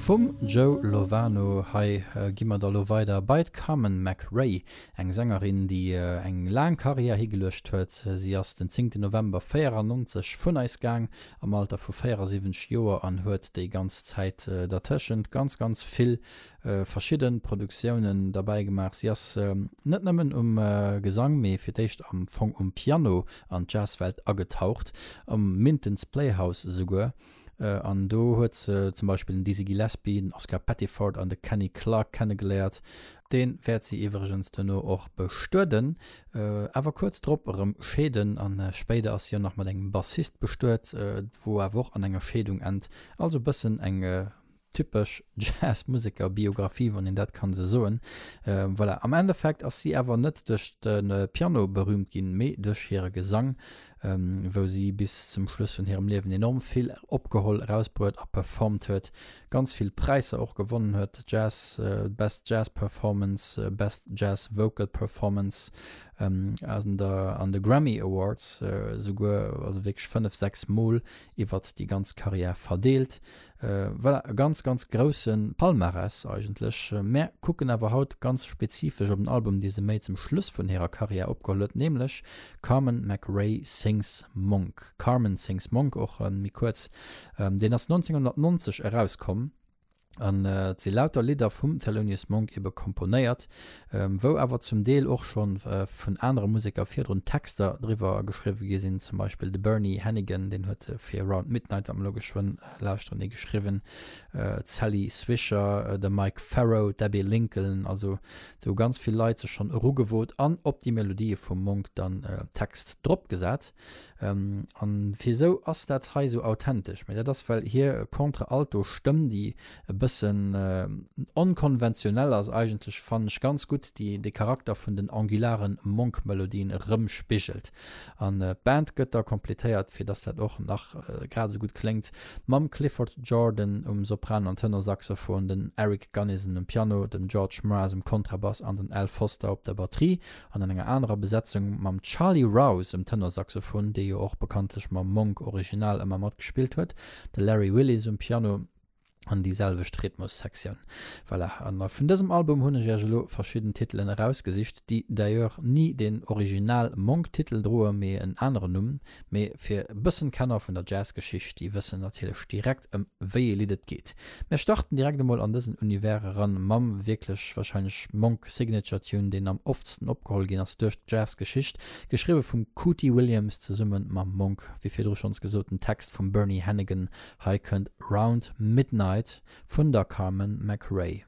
Vum Joe Lovano. Hei gi mer da lo weider bei d'Carmen McRae, eng Sängerin, déi eng laang Karriär higeluecht huet. Si ass den 10 November 94 vun eis gaang am Alter vu 74 Joer an huet déi ganz Zäit dertëschent ganz, ganz vill verschidde Produktiounen derbäi gemaach. Si ass net nëmmen um Gesang, mee fir d'éischt am Fong um Piano an d'Jazzwelt agetaucht, am Minton's Playhouse esouguer. An do huet se zum Beispill den Dizzy Gillespie, den Oscar Pettiford an de Kenny Clarke kennegeléiert. Dee wäert si iwwregens duerno och bestueden, awer kuerz drop erëm scheeden. A spéider ass si och nach mat engem Bassist bestuet, wou awer och an enger Scheedung ennt. Also bëssen eng Typesch Jazzmuseker Biographie, wann een dat kann esou soen. Voilà, am Endeffekt ass si awer net duerch de Piano berüümt ginn, mee duerch hire Gesang, wou si bis zum Schluss vun hirem Liewen enorm vill opgeholl, erausbruet a performt huet. Ganz vill Präisser och gewonnen huet, Jazz, Best Jazz Performance, Best Jazz Vocal Performance an der an de Grammy Awards esouguer, also wierklech fënnef, sechs Mol iwwert déi ganz Karriär verdeelt. Voilà, e ganz, ganz grousse Palmarès eigentlech. Mär kucken awer haut ganz spezifesch op en Album, dee se méi zum Schluss vun hirer Karriär opgeholl huet, nämlech Carmen McRae Sings Monk, Carmen Sings Monk, och méi kuerz. Deen ass 1990 erauskomm an et si lauter Lidder vum Thelonious Monk ebe komponéiert. wou awer zum Deel och scho vun anere Museker virdrun Texter driwwer geschriwwe gi sinn, zum Beispill de Bernie Hannigan, deen huet fir Around Midnight, wat mer elo geschwënn lauschteren, ee geschriwwen, d'Sally Swisher, de Mike Farrow, d'Abbey Lincoln. Also do hu ganz vill Leit sech schonn erugewot an op déi Melodië vum Monk dann Text dropgesat. An wiesou ass dat hei sou authentesch? Mee dat ass well hier Contre-Alto Stëmm déi e bëssen onkonventionell ass eigentlech fannen ech ganz gutt déi de Charakter vun den angularen Monk Melodien erëmspigelt. An d'Band gëtt da kompletéiert fir dass dat och nach grad esou gutt kléngt mam Clifford Jordan um Sopran an Tenorsaxophon, den Eric Gunnison um Piano, dem George Mraz um Kontrabass an den Al Foster op der Batterie an an enger anerer Besetzung mam Charlie Rouse um Tenorsaxophon, dee jo och bekanntlech mam Monk Original ëmmer mat gespillt huet, de Larry Willis um Piano an déi selwecht Rhythmussektioun. Voilà, a vun dësem Album hunn ech Iech elo verschidden Titelen erausgesicht, déi d'ailleurs ni den original Monk-Titel droe mee en aneren Numm. Mee fir e bëssen Kenner vun der Jazzgeschicht, déi wëssen natierlech direkt ëm wéi ee Lidd et geet. Mir starten direkt emol an dësen Univers eran mam wierklech wahrscheinlech Monk Signature Tune deen am oftsten opgeholl ginn ass duerch d'Jazz Geschicht, geschriwwe vum Cootie Williams zesumme mam Monk, wéi virdru schonns gesot, den Text vum Bernie Hannigan, hei kënnt Round Midnight vun der Carmen McRae.